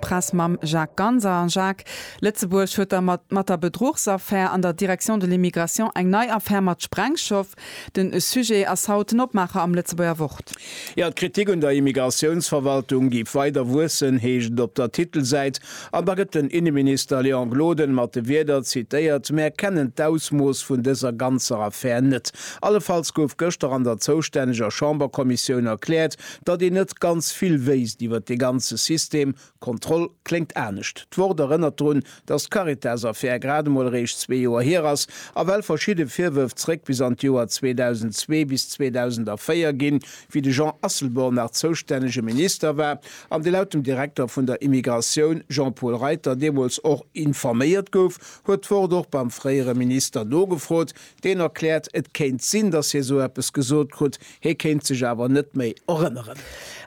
Press mam Jacques Ganser, Jacques, Lëtzebuerg huet da mat mat der Bedruchsaffär an der Direction de l'Immigration eng nei Affär mat Sprengschof. Den Sujet ass haut den Opmaacher am Lëtzebuerger Wort. Jo, d'Kritik un der Immigratiounsverwaltung géif weider wuessen, heescht et op der Titelsäit, an da gëtt den Inneminister Léon Gloden mat de Wierder zitéiert, Mär kennen d'Ausmooss vun dëser ganzer Affär net. Allefalls gouf gëschter an der zoustänneger Chamberkommissioun erkläert, Datt een net ganz vill wéisst iwwer dee ganze System, Kontroll kléngt anescht. D'Wort erënnert drun, datt d'Caritas-Affär grad emol eréischt zwee Joer hier ass a well verschidde Virwërf zréck bis an d'Joer 2002 bis 2004 ginn, wéi de Jean Asselborn nach zoustännege Minister war an dee laut dem Direkter vun der Immigratioun, Jean-Paul Reiter, deemools och informéiert gouf, huet d'Wort och beim fréiere Minister nogefrot, deen erkläert, et kéint sinn, datt hie sou eppes gesot krut, Hie kéint sech awer net méi erënneren.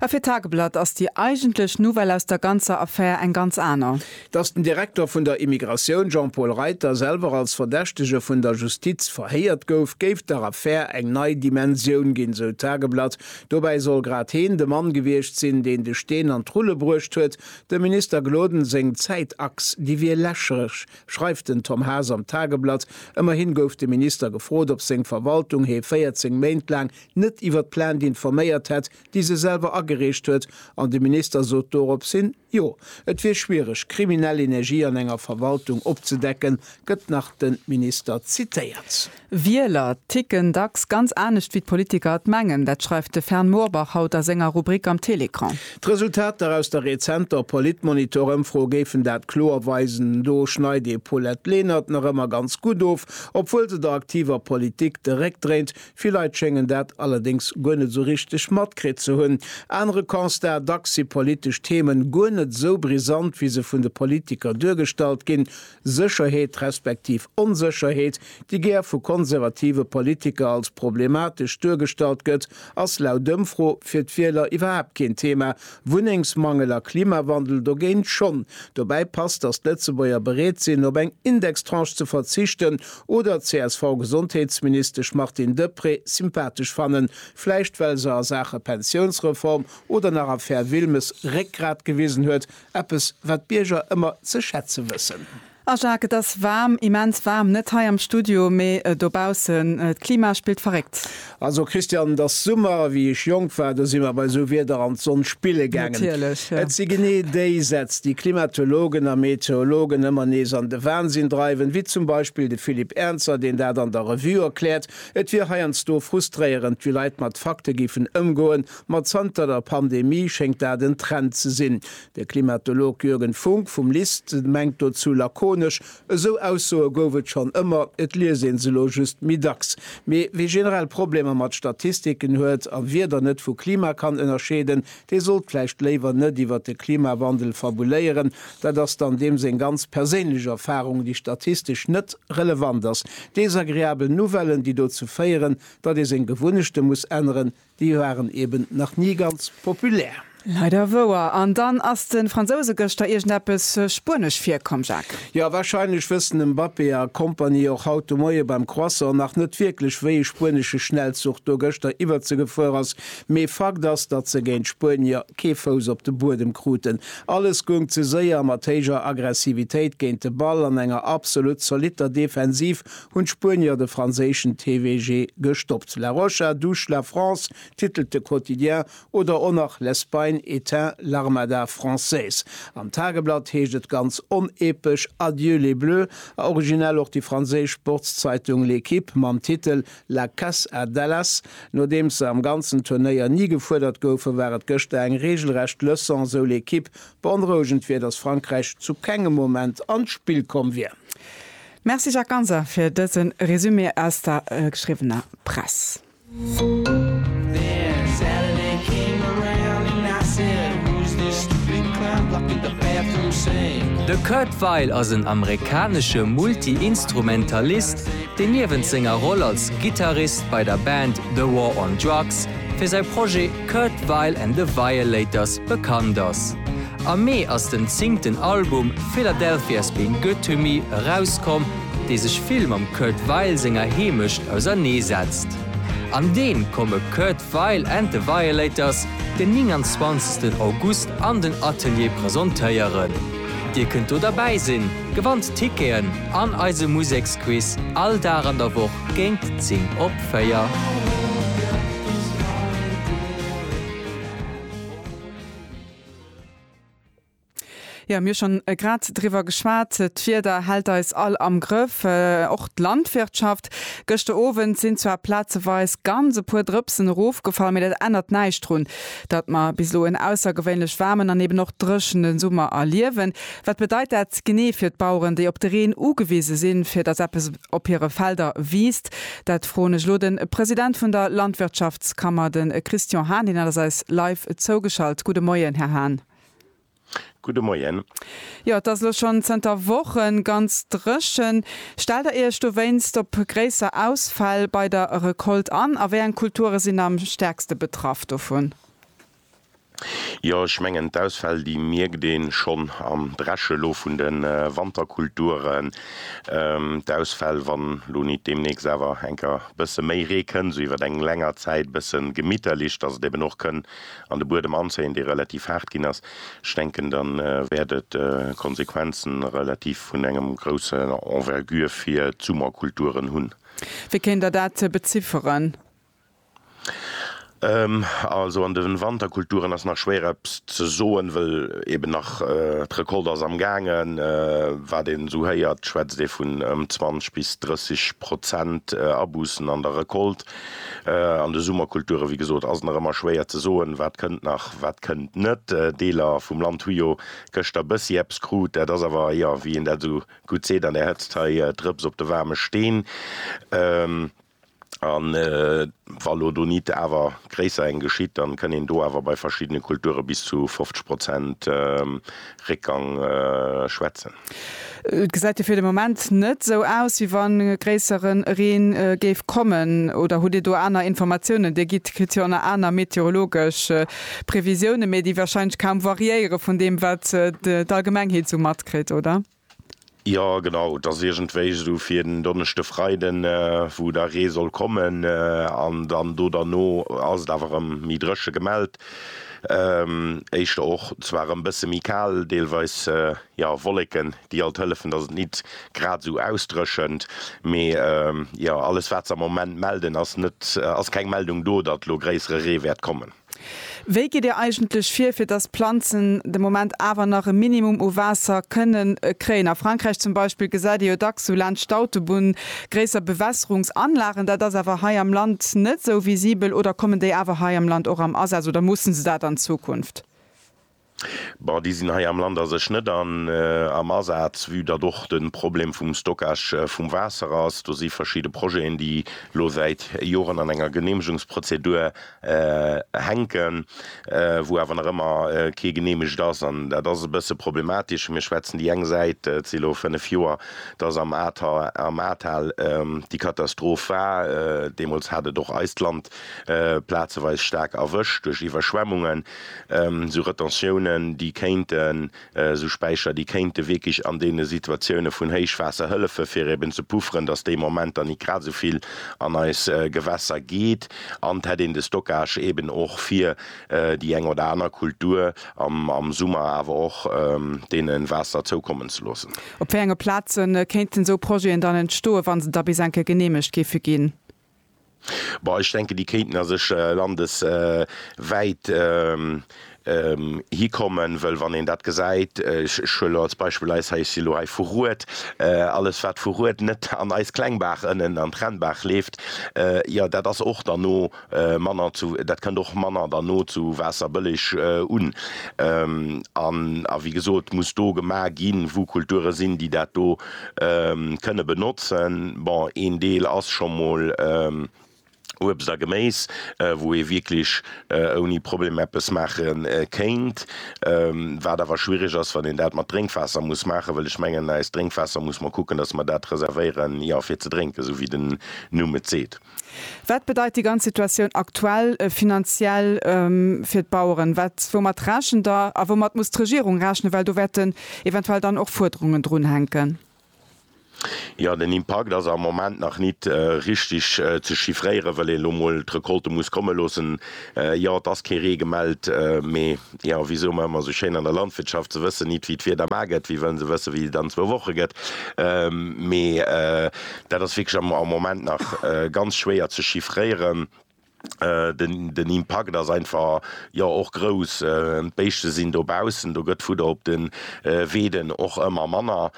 A fir d'Tageblatt ass déi eigentlech Nouvelle aus der ganzer Affär eng ganz aner. Datt den Direkter vun der Immigratioun Jean-Paul Reiter selwer als Verdächtege vun der Justiz verhéiert gouf, géif der Affär eng nei Dimensioun ginn, sou d'Tageblatt. Dobäi soll grad heen de Mann gewiescht sinn, deen de Steen an d'Rulle bruecht huet. Dem Minister Gloden seng Zäitachs, déi wier lächerlech, schreift den Tom Haas am Tageblatt. Ëmmerhin gouf de Minister gefrot, ob seng Verwaltung hee 14 Méint laang net iwwer d'Plainte informéiert hätt, déi se selwer agereecht huet, an de Minister sot dorops hin, Jo, et wier schwiereg, kriminell Energie an enger Verwaltung opzedecken, gëtt nach de Minister zitéiert. Wieler ticken dacks ganz anescht wéi d'Politiker et mengen. Dat schreift de Fern Moorbach haut a senger Rubrik am Télécran. D'Resultater aus der rezenter Politmonitor-Ëmfro géifen dat kloer weisen. Do schneit ee Paulette Lenert nach ëmmer ganz gutt of, obwuel se der aktiver Politik de Réck dréint. Vill Leit schéngen dat allerdéngs guer net esou richteg matkritt ze hunn. Anere Constat, Dacks si politesch Themen guer net esou brisant, wéi se vun de Politiker duergestallt ginn. Sécherheet respektiv Onsécherheet, déi gär vu konservative Politiker als problematesch duergestallt gëtt, ass laut Ëmfro fir d'Wieler iwwerhaapt keen Thema, Wunnengsmangel a Klimawandel dogéint schonn. Dobäi passt, datt d'Lëtzebuerger bereet sinn, op eng Indextranche ze verzichten oder d'CSV-Gesondheetsministesch Martine Deprez sympathesch fannen, vläicht well se a Saache Pensiounsreform oder nach Affär Wilmes Réckgrat gewisen huet, Eppes, wat d'Bierger ëmmer ze schätze wëssen. Ah Jacques, et ass waarm, immens waarm, net hei am Studio, mee dobaussen. D'Klima spillt verréckt. Also Christiane, et ass Summer, a wéi ech jonk war, do si mer bei esou Wieder an d'Sonn spille gaangen. Natierlech, jo. Et si genee déi Sätz, déi Klimatologen a Meteologen ëmmer nees an de Wansinn dreiwen, wéi zum Beispill de Philippe Ernzer, deen dat an der Revue erkläert, et wier heiansdo frustréierend, wéi Leit mat Fakte géifen ëmgoen, Ma zanter der Pandemie schéngt dat en Trend ze sinn. De Klimatolog Jürgen Funk vum LIST mengt dozou lakonesch, Esou Aussoe gouf et schonn ëmmer, et liest ee se elo just méi dacks. Mee wie generell Problemer mat Statistiken huet a wie dann net vu Klima kann ënnerscheeden, dee sollt vläicht léiwer net iwwer de Klimawandel fabuléieren. Dat ass dann deem seng ganz perséinlech Erfarung, déi statistesch net relevant ass. Desagreabel Nouvellen, déi dozou féieren, datt ee seng Gewunnechte muss änneren, Déi waren eben nach nie ganz populär. Leider wouer. An dann ass den Fransouse geschter iergend eppes Spuenesch virkomm, Jacques. Jo, wahrscheinlech wëssen den Mbappé a Kompanie och haut de Moie beim Croissant nach net wierklech wéi e spuenesche Schnellzuch do geschter iwwerzegefuer ass, mee Fakt ass datt se géint d'Spuenier kee Fouss op de Buedem kruten. Alles goung ze séier, mat héijer Aggressivitéit géint de Ball an enger absolut zolitter Defensiv hunn d'Spuenier de franséischen TVG gestoppt. La Rocha douce la France titelt de Quotidien oder och nach L'Espagne éteint l'Armada française. Am Tageblatt heescht et ganz onepesch Adieu les Bleus a originell och déi franséisch Sportszeitung L'Équipe mam Titel La casse à Dallas. Nodeems se am ganzen Turnéier ni gefuerdert goufen, war et gëschter eng reegelrecht Leçon, sou L'Équipe. Beonrouegend wier, datt Frankräich zu kengem Moment an d'Spill komm wier. Merci Jacques Ganser fir dëse Resumé aus der geschriwwener Press. De Kurt Weill ass en amerikanesche Multi-Instrumentalist, deen niewent senger Roll als Gittarist bei der Band The War on Drugs fir säi Projet Kurt Weill and the Violators bekannt ass. Am Mee ass den zingten Album Philadelphia's Been Good To Me erauskomm, dee sech vill mam Kurt Weill senger Heemecht ausernee setzt. An deem komme Kurt Weill and The Violators den 29 August an den Atelier presentéieren. Dir kënnt do derbäi sinn, gewannt Ticketen an eise Museksquiz all Dag an der Woch géint 10 op 4. Jo, mir hu schonn grad driwwer geschwat, d'Wieder hält eis all am Grëff, och d'Landwirtschaft. Gëschter Owend sinn zwar plazeweis ganz e puer Drëpsen erofgefall, mee dat ännert näischt drun, datt mer bis elo en aussergewéinlech waarmen an eben och dréchene Summer erliewen. Wat bedeit dat genee fir d'Baueren, déi op de Reen ugewise sinn, fir datt eppes op hire Felder wiisst? Dat froen ech elo de President vun der Landwirtschaftskammer, de Christian Hahn. Hien ass eis live zougeschalt. Gudde Moien, Här Hahn. Gudde Moien. Jo, et ass elo schonn zënter Wochen ganz dréchen. Stellt Der Iech dowéinst op gréisser Ausfäll bei der Recolte an a wéi eng Kulture sinn am stäerkste betraff dovun? Jo, ech mengen d'Ausfäll déi mierkt een schonn am Dreschen elo vun de Wanterkulturen. D'Ausfäll, wann elo nit demnächst awer enker bësse méi Ree kënn, esou iwwert eng länger Zäit bësse gemitterlech, dass et eben och kënn an de Buedem anzéien, dee relativ haart ginn ass. Ech denken dann wäert et Konsequenzen relativ vun engem groussen Envergure fir d'Summerkulturen hunn. Wéi kéint Der dat bezifferen? Also an den Wanterkulturen ass nach schwéier eppes ze soen, wëll eben nach d'Recolte ass am gaangen. Wat een esou héiert schwätzt ee vun ëm 20 bis 30 Prozent Aboussen an der Recolte. An de Summerkulturen, wéi gesot, ass nach ëmmer schwéier ze soen, wat kënnt nach, wat kënnt net. Deeler vum Land hu jo gëschter bëssi eppes krut. Dat ass awer, jo wéi een dat esou gutt seet an der Hëtzt hei, Drëps op de waarme Steen. A wa elo do nit awer gréisser eng geschitt, da kënn een do awer bei verschiddene Kulture bis zu 50 Prozent Réckgang schwätzen. Et gesäit jo fir de Moment net esou aus, wéi wa gréisseren Reen géif kommen. Oder hutt Dir do aner Informatiounen? Dir gitt, kritt jo ënner aner meteorologesch Previsiounen, mee déi warscheinlech kaum variéiere vun deem, wat d'Allgemengheet esou matkritt, oder? Jo genau, et ass iergendwéi esou fir den Donneschde, Freiden, wou da Ree soll kommen an dann do derno ass et awer erëm méi dréche gemellt. Éischter och zwar erëm bësse méi kal, deelweis jo Wolleken, déi alt hëllefen, dass et nit grad esou ausdréchent. Mee jo, alles wat se am Moment melden ass net, ass keng Meldung do, datt elo gréissere Ree wäert kommen. Wéi gitt Dir eigentlech vir, fir dass d'Planzen de Moment awer nach e Minimum u Waasser kënnen kréien? A Frankräich zum Beispill gesäit ee jo dacks sou laanscht d'Autobunn gréisser Bewässerungsanlagen. Dat ass awer hei am Land net sou visibel. Oder kommen déi awer hei am Land och am Asaz oder musse se dat an Zukunft? Bon, déi sinn hei am Land a sech net an, am Asaz, vue datt och de Problem vum Stockage vum Waasser ass. Do si verschidde Projeten, déi elo säit Joren an enger Geneemegungsprozedur hänken, wou awer nach ëmmer kee geneemegt ass. An dat ass e bësse problematesch. Mir schwätzen déi eng Säit, et si elo fënnef Joer, datt am Ahrtal, am Ahrtal déi Katastroph war. Deemools hat et och eist Land Plazeweis staark erwëscht duerch Iwwerschwemmungen, esou Retentiounen, déi kéinten, esou Späicher, déi kéinte wierklech an deene Situatioune vun Héichwaasser hëllefen, fir eben ze pufferen, datt dee Moment dann nit grad esou vill an eis Gewässer geet. An et hätt een de Stockage eben och fir déi eng oder aner Kultur am Summer awer och deene Waasser zoukommen ze loossen. Op wéi enge Plaze kéinten esou Projeten dann entstoen, wa se da bis enke geneemegt géife ginn? Bon, ech denken, déi kéinten a sech landeswäit hikommen, wëll wann een dat gesäit, ech huelen elo als Beispill eis hei, ech si elo hei vu Rued, alles wat vu Rued net an eis Klengbaach ënnen an d'Rennbaach leeft, jo dat ass och dann no manner zu, dat kënnt och manner dann no zu Waasserbëlleg un. A wéi gesot, muss do gemaach ginn, wou Kulture sinn, déi dat do kënne benotzen. Bon, een Deel ass scho mol Uebst a Geméis, wou ee wierklech ouni Problem eppes maache kéint. Wat awer schwierig ass, wann een dat mat Drénkwaasser muss maachen, well ech mengen, eist Drénkwaasser muss mer kucken, dass mer dat reservéieren, jo, fir ze drénken, esou wéi den Numm et seet. Wat bedeit déi ganz Situatioun aktuell finanziell fir d'Baueren? Wat, woumat rechent Der a woumat muss d'Regierung rechnen, well do wäerten eventuell dann och Fuerderungen drunhänken? Jo, den Impakt ass am Moment nach nit richtig ze chiffréieren, well een elo mol d'Recolte muss komme loossen. Jo, et ass kee Ree gemellt, mee jo, wéi soe mer ëmmer esou schéin an der Landwirtschaft, Se wëssen nit, wéi d'Wieder mar gëtt, wéi wëllen se wëssen, wéi et an zwou Woche gëtt? Mee Dat ass wierklech am Moment nach ganz schwéier ze chiffréieren. Den Impakt ass einfach, jo, och grouss. D'Béischte sinn dobaussen, do gëtt Fudder op de Weeden och ëmmer manner.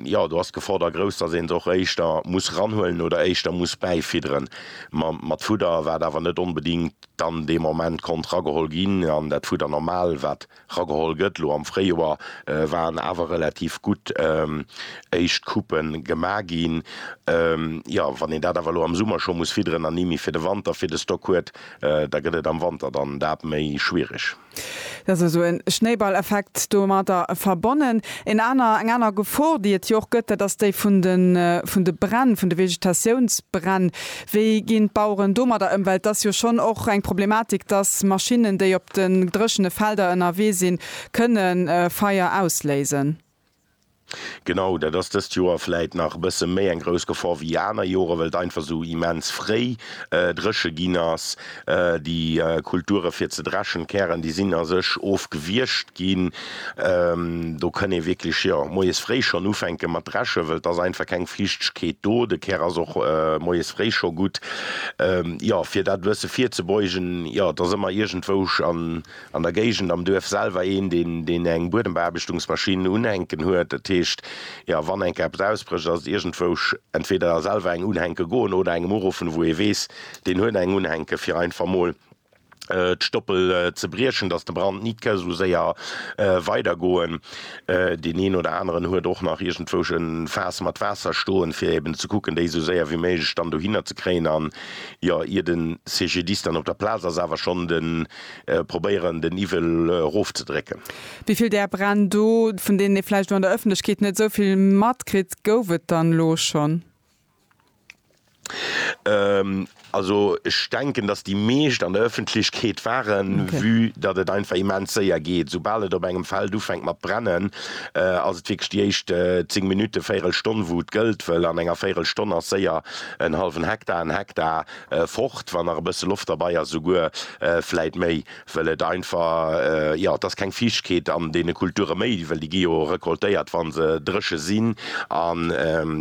Jo, do ass d'Geforder grouss, dass een se och éischter muss ranhuelen oder éischter muss bäifidderen mat Fudder, wat awer net onbedéngt dann dee Moment konnt rageholl ginn an dat Fudder normal, wat. Rageholl gëtt. Elo am Fréijoer waren awer relativ gutt éischt Coupe gemaach ginn. Jo, wann een dat awer elo am Summer scho muss fidderen an ni méi fir de Wanter fir de Stock huet, da gëtt et am Wanter dann dat méi schwiereg. Dat ass esou e Schnéiballeffekt domadder verbonnen. Een aner, eng aner Gefor, déi et jo och gëtt, dat ass déi vun de Bränn, vun de Vegetatiounsbränn. Wéi ginn d'Baueren domadder ëm? Well et ass jo schonn och eng Problematik, dass Maschinnen, déi op de dréchene Felder ënnerwee sinn, kënne Feier ausléisen. Genau, dat ass dëst Joer vläit nach e bësse méi eng grouss Gefor wéi aner Jore well et einfach esou immens fréi dréche ginn ass. Déi Kulture fir ze dreschen, d'Kären, déi sinn a sech ofgewiergt ginn. Do kënn ee wierklech, jo, moies fréi schonn ufänke mat dreschen, wëll et ass einfach keng Fiichtegkeet do. De Kär ass och moies fréi scho gutt. Jo, fir dat e bësse virzebeugen, jo, et ass ëmmer iergendwou an der Géigend am Duerf selwer een, deen eng Buedembeaarbechtungsmaschinn unhänken huet. Dat heescht, jo, wann eng Kéier eppes ausbrécht, ass et iergendwou entweder selwer eng unhänke goen oder engem uruffen, wou ee weess, Deen huet eng unhänke fir einfach mol d'Stoppel ze briechen dass de Brand nit ke sou séier weider goen. Deen een oder aneren huet och nach iergendwousch en Faass mat Waasser stoen fir eben ze kucken déi sou séier wéi méiglech dann dohinner ze kréien an jo ier den CGDIS dann op der Plaaz ass awer schon den probéieren den Iwwel roof ze drécken. Wéivill där Bränn do vun deenen ee vläicht o an der Öffentlechkeet net esou vill matkritt, gouf et dann elo schon? Also ech denken, datt déi meescht an der Ëffentlechkeet waren, vue datt et einfach immens séier geet. Esoubal et op engem Feld ufänkt mat brennen, ass et wierklech déi éischt zéng Minutten, véierel Stonn, wou et gëllt, well an enger véierel Stonn ass séier en hallwen Hektar, en Hektar fort, wann nach e bësse Loft derbai ass, esouguer vläit méi. Well et einfach, jo, et ass keng Fiichtkeet an deene Kulture méi, well déi gi jo recoltéiert, wa se dréche sinn. An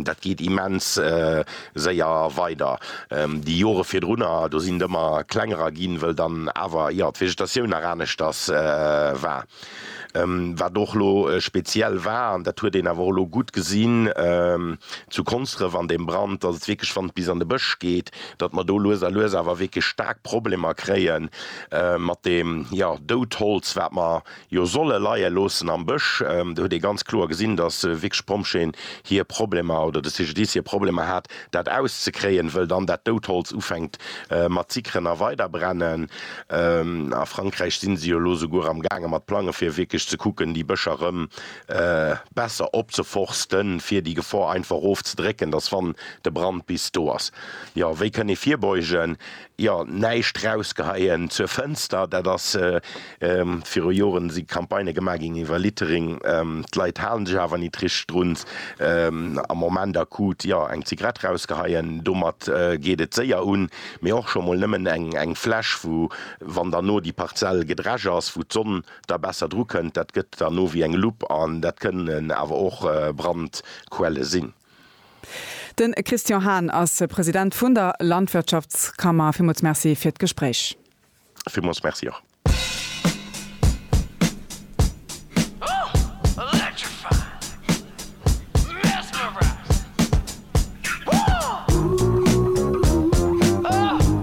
dat geet immens séier weider. Déi Jore virdrunner, do sinn d'Ëmmer klengerer ginn, well dann awer, jo, d'Vegetatioun nach aneschters war. Wat och elo speziell war, an dat huet een awer och elo gutt gesinn zu Konsdref an deem Brand, datt et wierklech, wann et bis an de Bësch geet, datt mer do lues a lues awer wierklech staark Problemer kréie mat deem, jo, Doudholz, wat mer jo solle leie loossen am Bësch. Do huet ee ganz kloer gesinn, datt wierklech d'Pompjeeën hir Problemer oder de CGDIS hir Problemer hat. Dat auszekréien, wëll dann dat dout Holz ufänkt mat zickeren a weider brennen. A Frankräich sinn se jo lo souguer am gaange mat plangen, fir wierklech ze kucken, déi Bëscher rëm besser opzeforsten, fir déi Gefor einfach ofzedrécken, dass wann de Brand bis do ass, jo, wéi kënn ee virbeugen? Jo, näischt rausgeheien zur Fënster, dat ass viru Joren si Campagnë gemaach ginn iwwer Littering. D'Leit halen sech awer nit richteg drun. Am Moment akut, jo, eng Zigarett rausgeheien, domat geet et séier un. Mee och scho mol nëmmen eng Fläsch, wou, wann dann no déi Parzell gedresch ass, wou d'Sonn da besser drukënnt, dat gëtt dann no wéi eng Lupp. An dat kënnen awer och Brandquelle sinn. De Christian Hahn ass President vun der Landwirtschaftskammer. Villmools Merci fir d'Gespréich. Villmools Merci och.